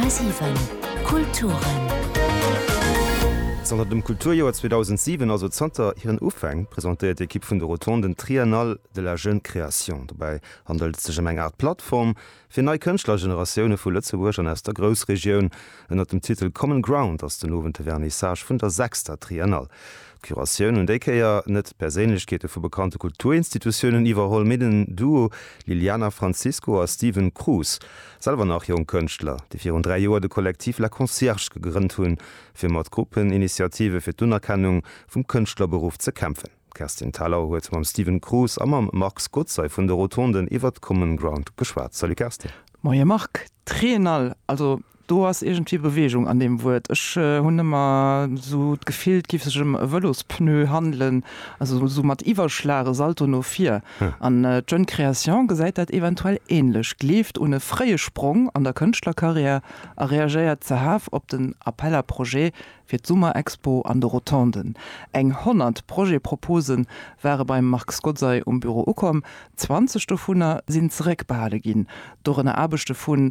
10,7 Kulturen. Zanter dem Kulturjoer 2007, also zanter hiren Ufäng, presentéiert d'Ekipp vun de Rotonden d'Triennale de la jeune création. Dobäi handelt et sech ëm eng Aart Plattform fir nei Kënschtlergeneratioune vu Lëtzebuerg an aus der Groussregioun. Ënnert dem Titel Common Ground ass den Owend de Vernissage vun der sechster Triennale. D'Curatioun hunn déi Kéier net Perséinlechkeete vu bekannte Kulturinstitutiounen iwwerholl, mee den Duo Liliana Francisco a Steven Cruz, selwer nach jonk Kënschtler, déi virun dräi Joer de Kollektiv La Concierge gegrënnt hunn, fir mat Gruppeninitiative fir d'Unerkennung vum Kënschtlerberuff ze kämpfen. D'Kerstin Thalau huet mam Steven Cruz a mam Marc Skotzey vun de Rotonden iwwer d'Common Ground geschwat. Salut Kerstin. Moie Marc. D'Triennale, also Do ass iergendwéi Bewegung an deem Wuert. Ech hunn ëmmer esou d'Gefill, et géif sech ëm e Vëlospneu handelen, also esou mat Iwwerschlag, e Salto no vir. An d'Jeune Création gesäit dat eventuell änlech, gleeft un e fréie Sprong an der Kënschtlerkarriär a reagéiert zehaf op den Appel à projets fir d'Summerexpo an de Rotonden. Eng 100 Projet-Propose ware beim Marc Skotzay um Büro ukomm, 20 dovunner sinn zeréckbehale ginn, dorënner Aarbechte vu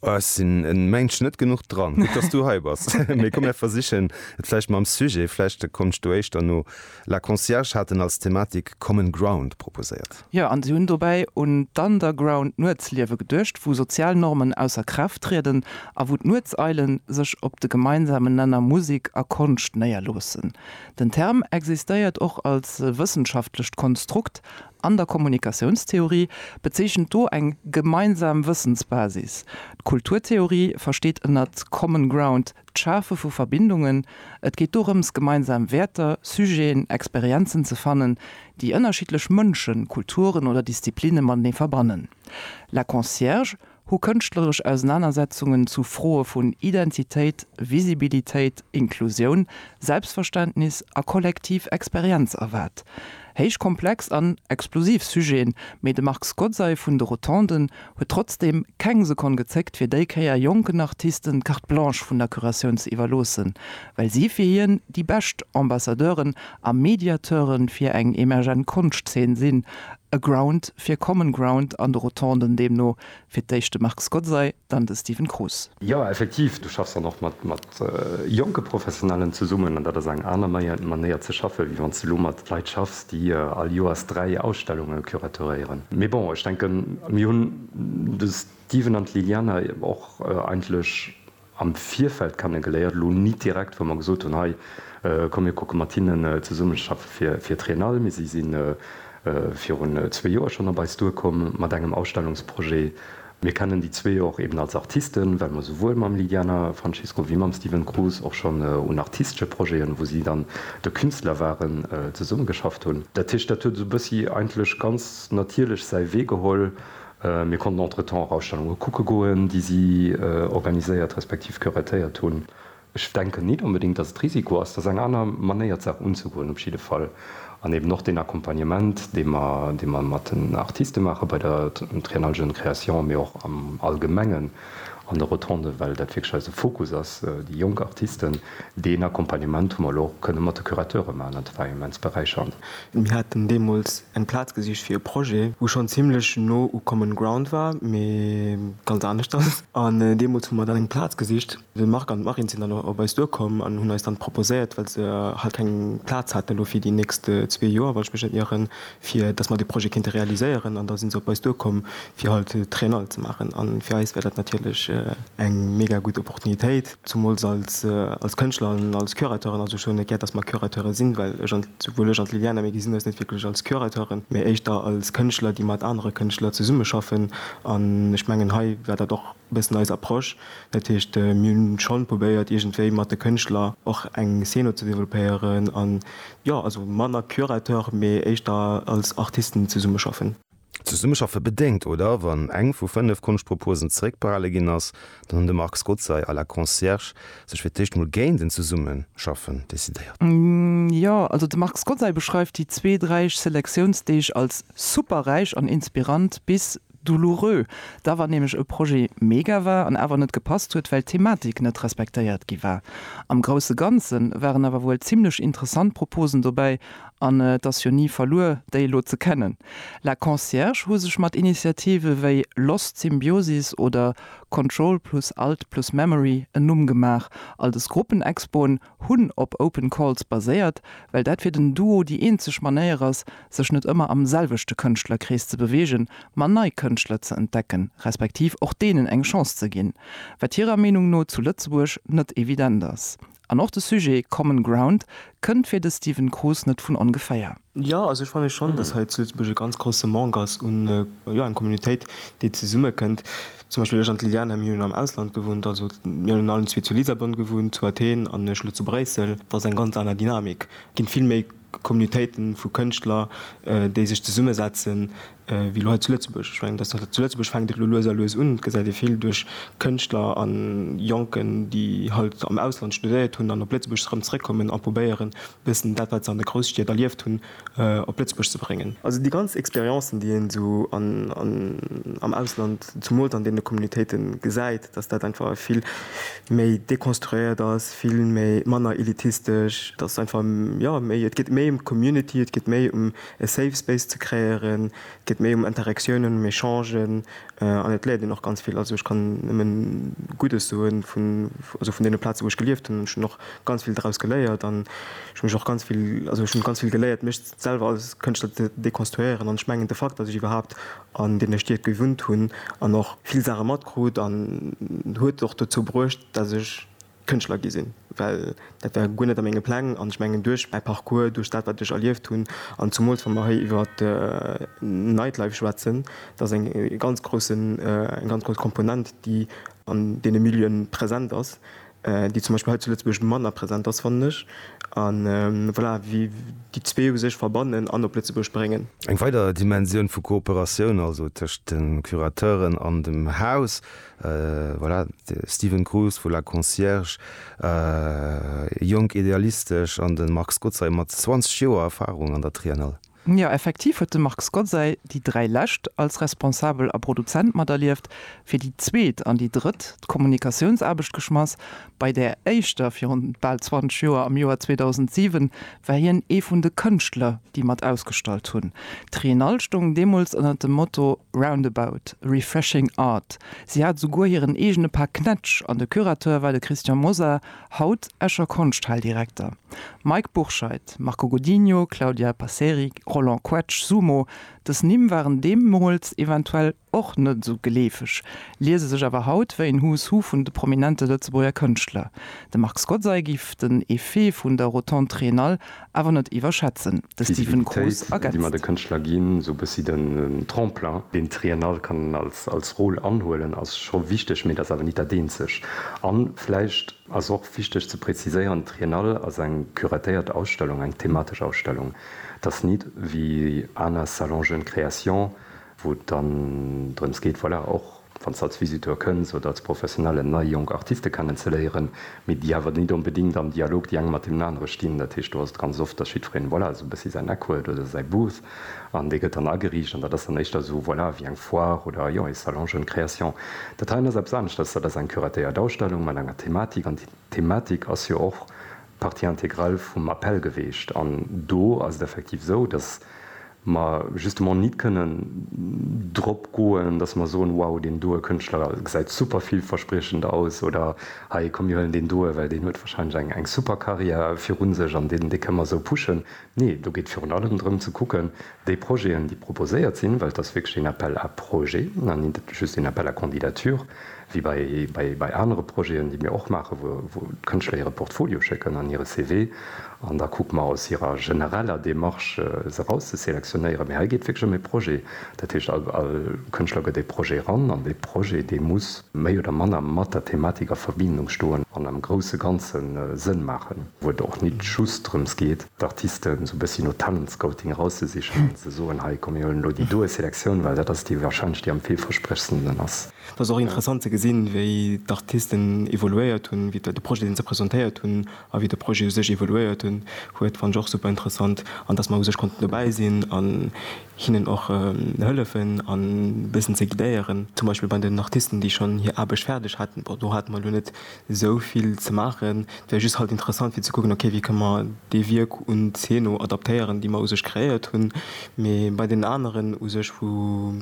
Oh ech sinn en Mensch net genuch dran. Gutt dass du hei bass. Mee komm mir versichen et vläicht mam Sujet, vläicht komms du éischter no. La Concierge haten als Thematik Common Ground proposéiert. Jo, an si hunn dobäi un d'Underground Nuetsliewe geduecht, wou sozial Normen ausser Kraaft trieden a wou d'Nuetseilen sech op de gemeinsamen Nenner Musek a Konscht néierloossen. Den Term existéiert och als wëssenschaftlecht Konstrukt An der Kommunikatiounstheorie bezeechent do eng gemeinsam Wëssensbasis. D'Kulturtheorie versteet ënnert Common Ground d'Schafe vu Verbindungen. Et geet dorëms, gemeinsam Wäerter, Sujeten, Experienzen ze fannen, déi ënnerschiddlech Mënschen, Kulturen oder Disziplinne matenee verbannen. La Concierge hu kënschtleresch Ausenanersetzungen zu Froe vun Identitéit, Visibilitéit, Inklusioun, Selbstverständnis a kollektiv Experienz erwaart. Héich komplex an explosiv Sujeten, mee de Marc Scozzai vun de Rotonden huet trotzdeem keng Sekonn gezéckt fir déi Kéier jonken Artisten d'Carte Blanche vun der Curatioun ze iwwerloossen, well si fir hien déi bescht Ambassadeuren a Mediateuren fir eng emergent Konschtzeen sinn, e Ground fir Common Ground an de Rotonden deemno fir d'éischt de Marc Scozzay, dann de Stephen Cruz. Jo, effektiv, du schaffs dann och mat jonke Professionellen zesummen an dat ass eng aner Manéier ze schaffen, wéi wann s de elo mat Leit schaffs, déi all Joers dräi Ausstellunge curateuréieren. Mee bon, ech denken, mir hunn, de Stephen an d'Liliana, och eigentlech am Virfeld kennegeléiert, elo nit direkt, wou mer gesot hunn, hei komm mir kucke mat hinnen zesummeschaffe fir fir d'Triennale, mee si si virun zwee Joer schonn op eis duerkomm mat engem Ausstellungsprojet. Mir kennen déi zwee och eben als Artisten, well mer souwuel mam Liliana Francisco wéi mam Steven Cruz och schonn un artistesche Projeten, wou si dann de Künstler waren, zesummegeschafft hunn. Dat heescht, dat huet esou bëssi eigentlech ganz natierlech säi Wee geholl, Mir konnten entretemps och Ausstellunge kucke goen, déi si organiséiert respektiv curateiert hunn. Ech denken nit onbedéngt, datt et Risiko ass, datt eng aner Manéier d'Saach unzegoen op jidde Fall an eben och deen Accompagnement, dee mer, dee mer mat den Artiste maache bei der Triennale Jeunes Créations, mee och am Allgemengen, an de Rotonden, well dat wierklech eise Fokus ass, déi jonk Artisten. Deen Accompagnement hu mer elo och kënne mat de Curateure maachen an dat war immens beräichernd. Mir haten deemools eng Plaz gesicht fir e Projet, wou schonn zimmlech no u Common Ground war, mee ganz anescht ass. An deemools hu mer dann eng Plaz gesicht. De Marc an d'Marine sinn dann op eis duerkomm an hunn eis dann proposéiert, well se halt keng Plaz haten elo fir déi nächst zwee Joer, wann ech mech net ieren, fir dass mer dee Projet kéinte realiséieren an da si se op eis duerkomm, fir halt d'Triennale ze maachen. A fir eis wär dat natierlech eng mega gutt Opportunitéit, zumools als Kënschtler an als Curateuren. Also ech soen net gär, dass mer Curateure sinn, well ech an souwuel ech an d'Liliana, mir gesinn eis net wierklech als Curateuren, mä éischter als Kënschtler, déi mat anere Kënschtler zesummeschaffen. An ech mengen hei war dat och. e bëssen eis Approche. Dat heescht, mir hunn schonn probéiert iergendwéi mat de Kënschtler och eng Szene ze développéieren an jo, also manner Curateur, mee éischter als Artisten zesummeschaffen. Zesummeschaffe bedéngt, oder? Wann eng vu fënnef Konschtproposen zeréckbehale ginn ass, dann hunn de Marc Scozzai à la Concierge sech fir d'éischt mol géint en Zesummeschaffen decidéiert. Jo, also de Marc Scozzai beschreift déi zweet räich Selektiounsdeeg als super räich an inspirant bis Douloureux, da wann nämlech e Projet mega war an awer net gepasst huet, well d'Thematik net respektéiert gi war. Am grousse Ganze waren awer wuel zimmlech interessant Proposen dobäi an et ass jo ni verluer, déi elo ze kennen. La Concierge hu sech mat Initiative wéi Lost Symbiosis oder Control plus Alt plus Memory en Numm gemaach. All des Gruppenexpoen hunn op Open Calls baséiert, well dat fir den Duo déi eenzeg Manéier ass, sech net ëmmer am selwechte Kënschtlerkrees ze beweegen, ma nei Kënschtler ze entdecken, respektiv och deenen eng Chance ze ginn, wat hirer Meenung no zu Lëtzebuerg net evident ass. An och de Sujet Common Ground kënnt fir de Stephen Kroos net vun ongeféier. Jo, also ech fanne schonn, dass hei zu Lëtzebuerg e ganz grousse Manque ass un, jo, eng Communautéit, déi zesummekënnt. Zum Beispill ech an d'Liliana, mir hunn am Ausland gewunnt, also mir hunn allen zwee zu Lissabon gewunnt, zu Athen an ech elo zu Bréissel. Dat ass eng ganz aner Dynamik. Et ginn vill méi Communautéiten vu Kënschtler, déi sech zesummesetzen, wéi elo hei zu Lëtzebuerg. Ech mengen, datt zu Lëtzebuerg fänkt et elo lues a lues un, et gesäit ee vill duerch Kënschtler a Jonken, déi halt am Ausland studéiert hunn an op Lëtzebuerg erëm zeréckkommen a probéieren, e bëssen dat, wat se an de Grousstied erlieft hunn, op Lëtzebuerg ze bréngen. Also déi ganz Experiencen, déi een esou am Ausland, zumools an deene Communautéite gesäit, datt dat einfach vill méi dekonstruéiert ass, vill manner elitistesch, datt einfach, jo, et geet méi ëm d'Community, et geet méi ëm E Safe Space ze kreéieren geet méi ëm Interaktioune, ëm Echangen an et léiert een och ganz vill. Also ech kann nëmmen Guddes soe vun, also vun deene Plaze wou ech gelieft hunn. Ech hunn och ganz vill draus geléiert an ech hu mech och ganz vill, also ech hunn ganz vill geléiert mech selwer als Kënschtler ze dekonstruéieren an ech mengen de Fakt, datt ech iwwerhaapt an deene Stied gewunnt hunn an och vill Saache matkrut, huet och dozou bruecht, datt ech, Kënschtler gi sinn, well dat war guer net a menge Pläng. An ech mengen, duerch mäi Parcours, duerch dat, wat ech erlieft hunn, an zumools wa mer hei iwwer d'Nightlife schwätzen, dat ass eng ganz groussen, eng ganz grouss Komponent, déi an deene Milieuen present ass, déi zum Beispill hei zu Lëtzebuerg manner present ass, fannen ech. A voilà, wéi déi zwee u sech verbannen an op Lëtzebuerg bréngen. Eng weider Dimensioun vu Kooperatioun also tëscht de Curateuren an dem Haus, Voilà, de Steven Cruz vu La Concierge, jonk, idealistesch, an de Marc Skotzaj mat 20 Joer Erfarung an der Triennale. Jo, effektiv huet de Marc Skotzaj déi dräi lescht als Responsabel a Produzent materlieft, fir déi zweet an déi drëtt d'Kommunikatiounsaarbecht geschmass. Bei där éischter, virun bal 20 Joer, am Joer 2007, war hien ee vun de Kënschtler, déi mat ausgestallt hunn. D'Triennale stoung deemools ënner dem Motto Roundabout, Refreshing Art. Si hat esouguer hiren eegene Par Knätsch an de Curateur war de Christian Mosar, haut Escher Konschthaldirekter. Mike Bourscheid, Marco Godinho, Claudia Passeri, Roland Quetsch, Sumo, dës Nimm waren deemools eventuell och net esou geleefeg, liese sech awer haut wéi en Who's Who vun de prominente Lëtzebuerger Kënschtler. De Marc Scozzai giff den Effet vun der Rotonde Triennale awer net iwwerschätzen. De Stephen Kroos ergänzt. Deen d'Triennale kann als Rôle anhuelen, ass scho wichteg, mee et ass awer nit dat eenzeg. A vläicht ass och wichteg ze präziséieren, d'Triennale ass eng curatéiert Ausstellung, eng thematesch Ausstellung. Et ass nit wéi aner Salons Jeunes Créations, wou et dann drëms geet, voilà, och wann s de als Visiteur kënns oder als Professionellen, nei jonk Artiste kennenzeléieren, mee déi awer net onbedéngt am Dialog déi eng mat deenen anere stinn. Dat heescht, do ass et ganz oft, datt jiddwereen, voilà, esou e bëssi säin Eck huet oder säi Booth an dee gëtt dann ageriicht an dat ass dann éischter esou, voilà, wéi eng Foire oder, jo, ee Salon Jeune Création. Dat heien ass eppes aneschters, dat ass eng curatéiert Ausstellung mat enger Thematik an déi Thematik ass jo och Partie intégrale vum Appel geweecht. An do ass et effektiv esou, dass mer justement nit kënnen drop goen, dass mer soen, wow, deen doe Kënschtler gesäit super villverspriechend aus oder hei, komm mir huelen deen doe, well deen huet wahrscheinlech eng super Carrière virun sech an dee kënne mer esou pushen. Nee, do geet et virun allem drëm ze kucken, déi Projeten, déi proposéiert sinn, well et ass wierklech een Appel à projets an nit just een Appel à candidatures, wéi bei, bei anere Projeten, déi mir och maachen, wou, wou d'Kënschtler hire Portfolio schécken an hire CV an da kucke mer aus hirer genereller Démarche se eraus ze selektionéieren. Mee hei geet et wierklech ëm ee Projet. Dat heescht, all, all Kënschtler gëtt ee Projet eran an dee Projet, dee muss méi oder manner mat der Thematik a Verbindung stoen an am grousse Ganze Sënn maachen. wou et och nit just drëms geet, d'Artisten esou e bëssi no Talentscouting erauszesichen an ze soen, hei, komm, mir huelen elo déi doe Selektioun, well dat ass déi wahrscheinlech, déi am villversprechendsten ass. Et ass och interessant ze gesinn, wéi d'Artisten evoluéiert hunn, wéi de Projet, deen se presentéiert hunn, a wéi de Projet u sech evoluéiert hunn, huet, fannt ech och super interessant. An dass mer u sech konnten dobäi sinn an hinnen och hëllefen a bëssen ze guidéieren, zum Beispill bei den Artisten, déi schonn hir Aarbecht fäerdeg haten, bon, do hate mer elo net esou vill ze maachen. Et wär just halt interessant fir ze kucken, ok wéi kënne mer dee Wierk un d'Zeen no adaptéieren, déi mer u sech kreéiert hunn. Mee bei deenen aneren u sech, wou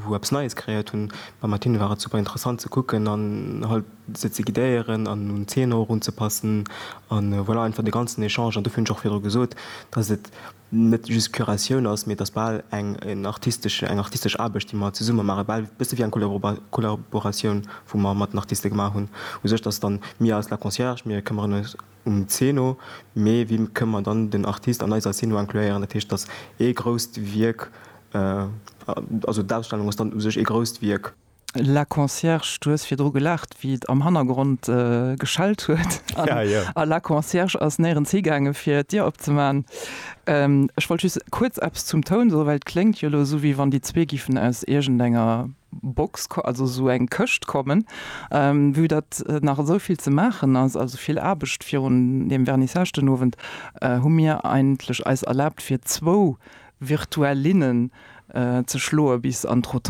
wou eppes Neies kreéiert hunn, beim Martine war et super interessant ze kucken an halt se ze guidéieren an un d'Zeen och erunzepassen. A voilà, einfach de ganzen Echange. An dofir hunn ech och virdru gesot, dass et net just Curatioun ass, mee et ass bal eng artistesch eng artistesch Aarbecht, déi mer zesumme maachen, bal e bësse wéi eng Kollabo Kollaboratioun, wou mer mat den Artiste gemaach hunn. U sech, dass dann mir als La Concierge, mir këmmeren eis um d'Zeen no, mee wéi kënne mer dann den Artist an eiser Zeen no incluéieren? Dat heescht, dass ee grousst Wierk, also d'Ausstellung ass dann u sech ee grousst Wierk. La Concierge, du hues virdru gelaacht, wéi et am Hannergrond geschellt huet. Ja, ja. A La Concierge ass néierens higaangen, fir d'Dier opzemaachen. Ech wollt just kuerz eppes zum Toun soen, well et kléngt jo elo esou, wéi wann déi zwee giffen aus iergendenger Box, also esou eng Këscht kommen, vue datt nach esou vill ze maachen ass, also vill Aarbecht virun deem Vernissage den Owend, hu mir eigentlech eis erlaabt, fir zwou Virtuellinnen ze schloen bis an d'Rotonde.